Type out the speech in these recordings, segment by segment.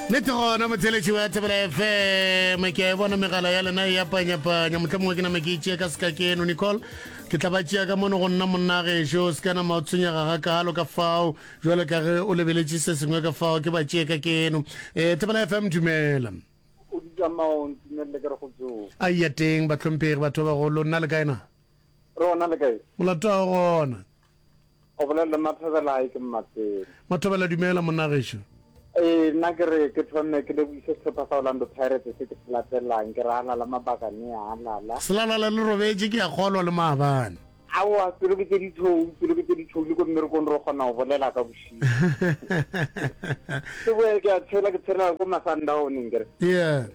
nete gona motheletši wa thebela fm ke a e bona megala ya lena ya panyapanya motlha mongwe ke name ke itšee ka seka ke eno nicole ke tla ba tšea ka mono go nna monna gešo se ka nama o tshwenyega ga kalo ka fao jalo ka ge o lebeletše se sengwe ka fao ke ba tšee ka ke eno um thebela fm dumela a iya teng batlhomphegi batho ba bagolo nna le kaena molato wa gona O bolela le Mathobela, ke Mmatsele. Mathobela, dumela monna gešo. Ee, nna ke re ke thome ke leboise sehlopha sa Orlando Pirates se ke se latelang, ke re halala mabakane a halala. Selalala le robetše ke a kgolwa le maabane. Aowa, pelo ke tše ditšhou, pelo ke tše ditšhou, le ko mmerekong re kgona go bolela ka bošego. Ke boe ke a tshela, ke tshelela ko Masandaone nkere. Yeah.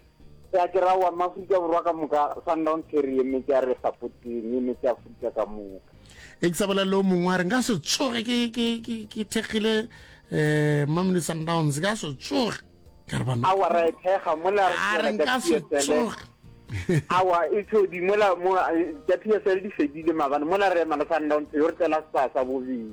Sa kera wa Maafrika Borwa ka moka, Sundowns ke re emetše ya re sapoteng, emetše Afrika ka moka. E ke sa bolela le o mongwe a re nka se tsoge ke, ke, ke, ke thekgile eh, Mamelodi Sundowns, ka se tsoge. Ka re bana. Awa ra e thekga, mola re A re tšwela ka nka se PSL. tsoge. Awa e tshodi, mola mo, eh, tša PSL di fedile mabane, mola re ema le Sundowns yo re tšwela sa sa bobedi.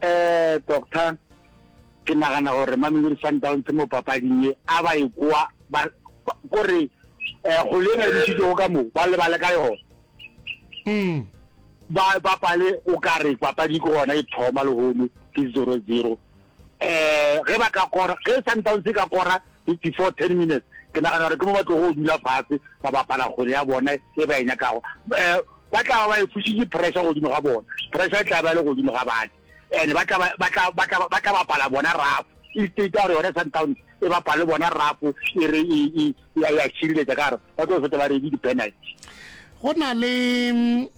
Eh, doctor, ke nagana gore Mamelodi Sundowns mo papading e a ba e kwa ba gore eh go le ba ditšitšego ka mo ba lebale ka yona. Mm. Ba bapale o ka re papadi ke gona e thoma le hono ke 0-0. Eh ge ba ka kora ge Sundowns e ka kora 54 10 minutes ke nagana gore ke mo ba tlogo go dula fase ba bapala kgwele ya bona e ba e nyakago um ba tla ba ba e fusitše pressure godimo ga bona pressure e tla ba le godimo ga bane and ba tla ba tla ba tla ba tla bapala bona rafo e state gore yone sundown e bapale bona rafo e re e ya ya tshireletsa ka gore ba tlo feta ba redi di-penalty go na le um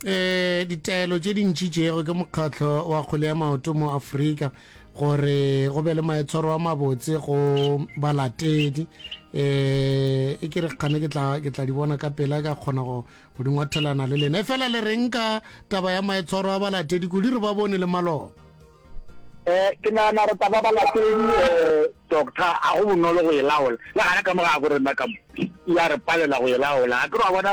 ditaelo tše dintši tšeego ke mokgatlho wa kgole ya maoto mo afrika gore go be le maetshwaro a mabotse go balatedi eh e ke re kgane ke tla ke tla di bona ka pela ka kgona go go di ngwathelana le lena e fela le reng ka taba ya maetshwaro a balatedi kudi re ba bone le maloba eh ke nagana re taba balatedi eh, doctor a go bonolo go e laola le gana ka mo ga go rena ka mo ya re palela go e laola a ke re wa bona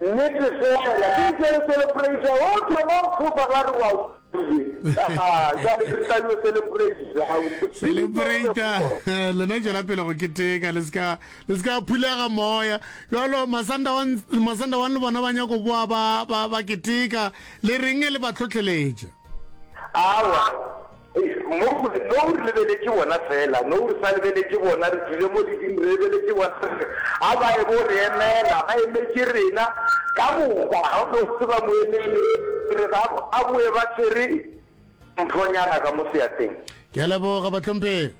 Nnete fela, ke ntšere celebration wo thoma go fofa ba re wa utlwile. Jwale ke tla yo celebration. Celebrate lena tšwela pele go keteka le ska le ska phulega moya. Jwalo masanda wa masanda wa le bona ba nyako boa ba ba keteka le reng le ba tlhotlheletša. Awa. Mo go re, Nou re lebeletše bona feela. Nou re sa lebeletše bona, re dule mo leding re lebeletše bona. Re re, A ba e bo re emela. Ba emetše rena. Ka moka, ga o no tseba moemedi. Ke re, Ba bo, ba boe ba tshwere mphonyana ka mo seatleng. Ke a leboga, bahlomphegi.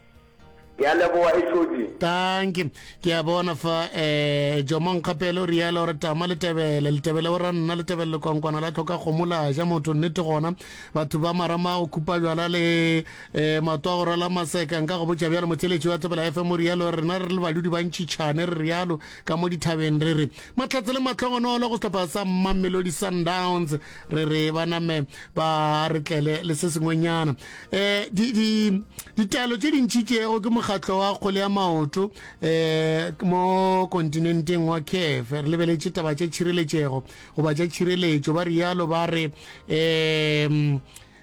Ke a leboga Ešodi. Tanki. Ke a bona fa eh Jomong Kgapele o rialo gore tama le tebele le tebele o ra nna le tebele lekwankwana la tlhoka kgomo la ja motho nnete gona batho ba marama go khupa jwala le eh mato a go rala maseka nka go botša bjalo motheletši wa tebela FM o rialo gore rena re le badudi ba ntšhitšhane re rialo ka mo dithabeng re re mahlatse le matlhongonolo go sehlopha sa Mamelodi Sundowns re re ba name ba re tlele le se sengwenyana eh di di ditaelo tše dintši tšego ke mokgatlo wa kgole ya maoto eh mo kontinenteng wa CAF re lebeletše taba tša tšhireletšego goba tša tšhireletšo ba rialo ba re eh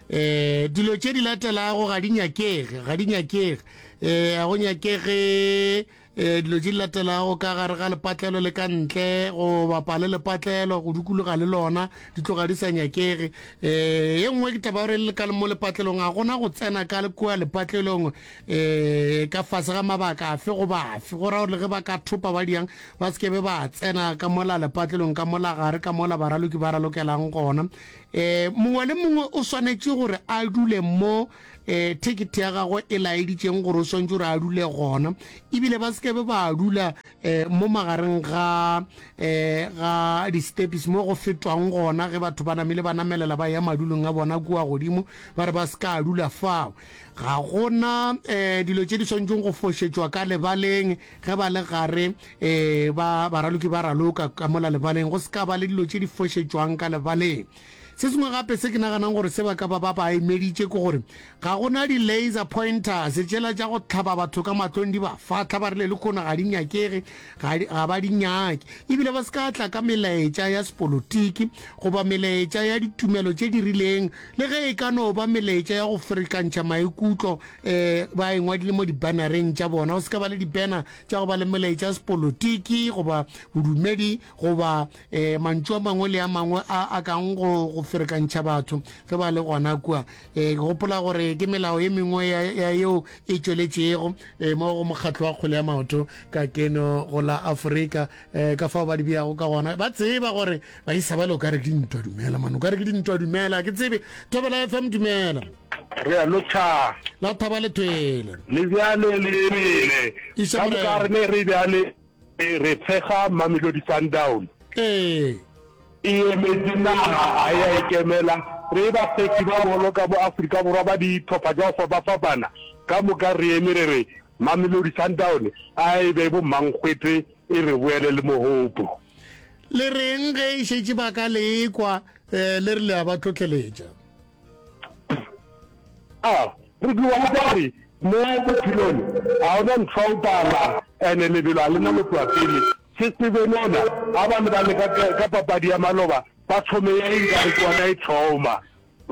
eh dilo tše di latelago ga di nyakege ga di nyakege eh a go nyakege e dilo di latelago ka gare ga lepatlelo le ka ntle go bapa le lepatlelo go dukologa le lona di tloga di sa nyakege um ye nngwe ke taba gore le ka mo lepatlelong ga gona go tsena ka kua lepatlelong um ka fase ga mabaka afe go bafe go ra gore le ge ba ka thopa ba diang ba se kebe ba tsena ka mola lepatlelong ka mola gare ka mola baraloki ba ralokelang gona um mongwe le mongwe o swanetše gore a dule mo e thekete ya gagwe e laeditšeng gore o swantse gore a dule gona ebile ba sekebe ba dula um mo magareng ga um ga di-stepis mo go fetwang gona ge batho ba namile ba namelela ba ya madulong a bona kua godimo ba re ba se ka dula fao ga gona um dilo tse di swantšeng go fošetšwa ka lebaleng ge ba le gare um ba baraloki ba raloka ka mola lebaleng go se ka ba le dilo tse di fošetšwang ka lebaleng Se sengwe gape se ke naganang gore se ba ka ba ba ba emeditše ke gore ga go na di-laser pointers tšela tša go tlhaba batho ka matlong di ba fatlha ba rile le kgono ga di nyakege ga di- ga ba di nyake ebile ba se ka tla ka melaetša ya sepolotiki goba melaetša ya ditumelo tše di rileng le ge e ka no ba melaetša ya go ferekantšha maikutlo um ba e ngwadile mo dibannereng tša bona go se ka ba le dibanner tša go ba le melaetša ya sepolotiki goba bodumedi goba E, mantšu a mangwe le a mangwe a a kang go go ferekantšha batho ge ba le gona kua. E, ke gopola gore ke melao e mengwe ya, ya yeo e tšweletšego e, mo go mokgatlo wa kgwele ya maoto ka keno go la Afrika, e, ka fao ba di beago ka gona. Ba tseba gore ba isa ba le o ka re ke dintwa. Dumela, man, o ka re ke dintwa. Dumela, a ke tsebe. Thobela FM, dumela. Re a lo tha. La thaba le thwele. Le bjale le ebile. Iša Ka moka morena. re ne re bjale. Ee, re tshega Mamelodi Sundowns. Ee. E emetše naga, ga e a ikemela. Re e bafepi ba bolo ka mo Afrika Borwa ba dihlopha tša go fapafapana. Ka moka re eme re re Mamelodi Sundowns a e be bomankgwete e re boele le mohopo. Le reng ge e šetše ba ka le ekwa le re le a ba tlotleletša? a re dua go kwa re mo bophelong ga ona ntho o pala ene lebelo a lena motloa pele se tsebe nona ga ba ne ba leka ka papadi ya maloba ba thome ya eng ka re ke ona e thoma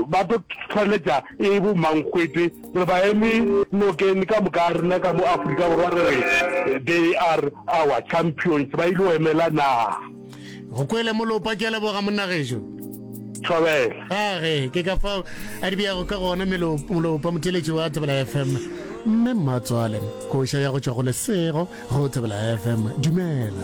ba tlo tshwanetša e bo mankgwete re ba eme nokeng ka moka rena ka mo aforika borwa re re they are our champions ba ile go emela naga go kwele molopa ke a leboga monna gejo thobela age ke ka fao a di beyago ka gona molopa motheletši wa thobela fm mme mmatswale koša ya go tšwa go lesego go thobela fm dumela